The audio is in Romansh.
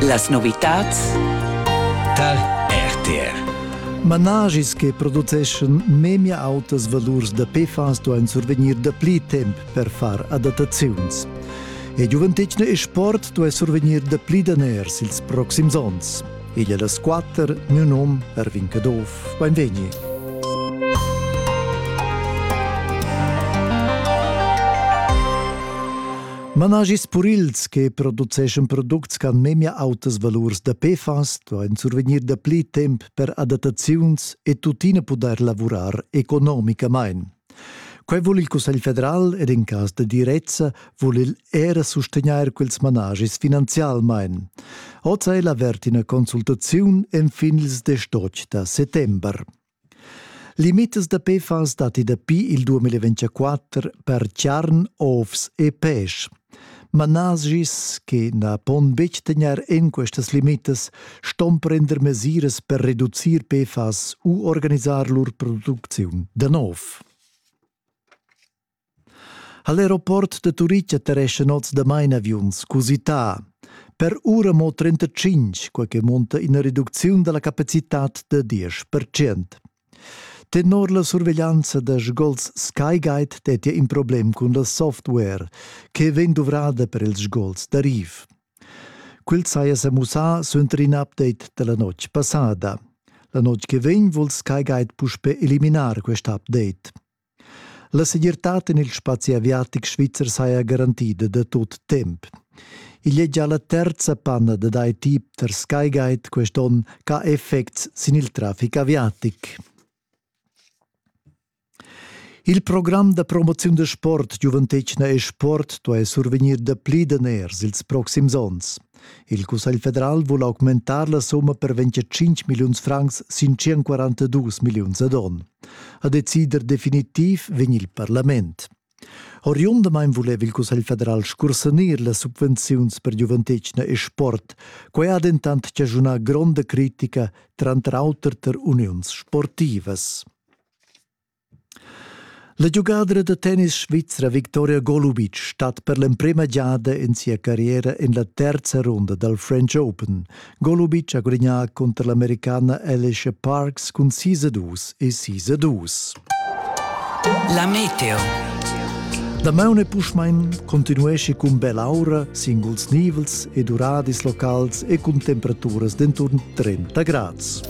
Las novitads tar RTR. Managis che produceschan memia autas valurs da PFAS duain survegnir dapli temp per far adattaziuns. E giuventetgna e sport duai survegnir dapli daners ils proxims onns. Igl è las quatter, miu num Ervin Caduff. Beinvegni. Managis purils che produceschan products che han memia autas valurs da PFAS duain survegnir dapli temp per adattaziuns e tuttina pudair lavurar economicamain. Quai vul il Cussegl federal ed in cas da direzza vul el era sustegnair quels managis finanzialmain. Oz è la ina consultaziun enfin ils 18 da settember. Limitas da pefas datti dapi il 2024 per charn, ovs e pesch. Managis che na pon betg tegnair en questas limitas ston prender mesiras per reducir PFAS u organisar lur producziun da nov. Ha l'aeroport da Turitg atterescha noz damain aviuns cusità. Per ura mo 35, quai che munta ina reducziun da la capacitad da 10%. Tenor la surveglianza da sgols SkyGuide dettia in problem cun la software che vegn duvrada per ils sgols da riv. Quel saja sa mussà suenter in update da la notg passada. La notg che vegn vul SkyGuide puspè eliminar quest update. La segirtad en il spazi aviatic svizzer saja garantida da tut temp. Igl è già la terza panna dad IT per Skyguide quest onn ch'ha effects sin il traffic aviatic. Il program da promoziun da sport giuventetgna e sport duai survegnir dapli daners ils proxims onns. Il Cussegl federal vul augmentar la summa per 25 milliuns francs sin 142 milliuns ad on. A decider definitiv vegn il parlament. Oriundamain vuleva il Cussegl federal scursanir las subvenziuns per giuventetgna e sport. Quai ha dentant chaschunà gronda critica, tranter auter tar uniuns sportivas. La giugadra da tennis svizra Victoria Golubic stat per l'emprema giada en sia carriera en la terza runda dal French Open. Golubic ha gudagnà cunter l'Americana Alicia Parks cun sis a dus e sis a dus. La meteo. Damaun e Puschmain continuesce cun bell'aura, singuls nivels e duradis locals e cun temperaturas d'enturn 30 grads.